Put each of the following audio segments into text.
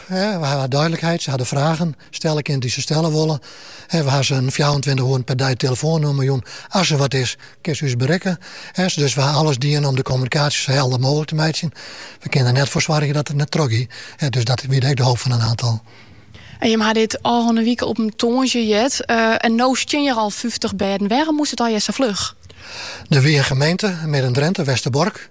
We ha dúdlikheid, se ha de fragen stelle kinnen dy't se stelle wolle. We ha se in fjouwerentweintich oeren per dei telefoannûmer jûn. As der wat is, kinne se ús berikke. Dus we ha alles dien om de kommunikaasje sa helder mooglik te meitsjen. We kinne der net foar soargje dat it net trochgiet. Dus dat wie ek de hoop fan in aantal. En jimme ha dit ôfrûne wike op tongersdei heard. En no stean hjir al fyftich bêden. Wêrom moast it allegear sa fluch? Der wie in gemeente, Midden-Drinte, Westerbork,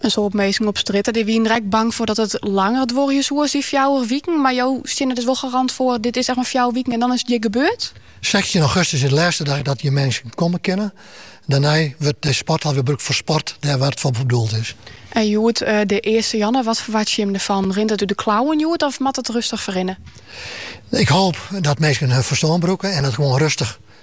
In soad minsken op strjitte dy wiene der ek bang foar dat it langer duorje soe as dy fjouwer wiken. Mar jo steane der wol garant foar, dit is echt mar fjouwer wiken en dan is it hjir gebeurd? Sechstjin augustus is de lêste dag dat hjir minsken komme kinne. Dêrnei wurdt de sporthal wer brûkt foar sport, dêr wêr't it foar bedoeld is. En hjoed de earste jûn, wat ferwachtsje jim derfan? Rint it út de klauwen hjoed of moat it rustich ferrinne? Ik hoop dat minsken hun ferstân brûke en dat it gewoan rustich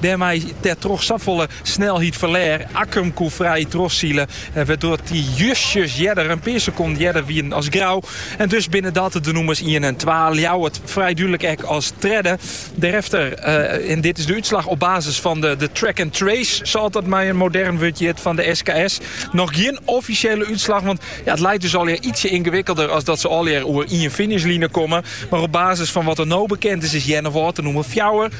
Dêrmei wer troch safolle snelheid ferlêr. Akkrum koe frij trochsile, eh, wêrdoar't dy justjes earder, in pear sekonden earder, wienen as Grou. En dus binne dat de nûmers ien en twa. Ljouwert frij dúdlik ek as tredde. Derefter, eh, en dit is de útslach op basis fan de, de track and trace, sa't dat mei in modern wurd hjit van de SKS. Noch gjin offisjele útslach, want ja, it leit dus alwer ytsje yngewikkelder as dat se alwer oer ien finishline komme. Mar op basis fan wat der no bekend is, is Earnewâld nûmer 4.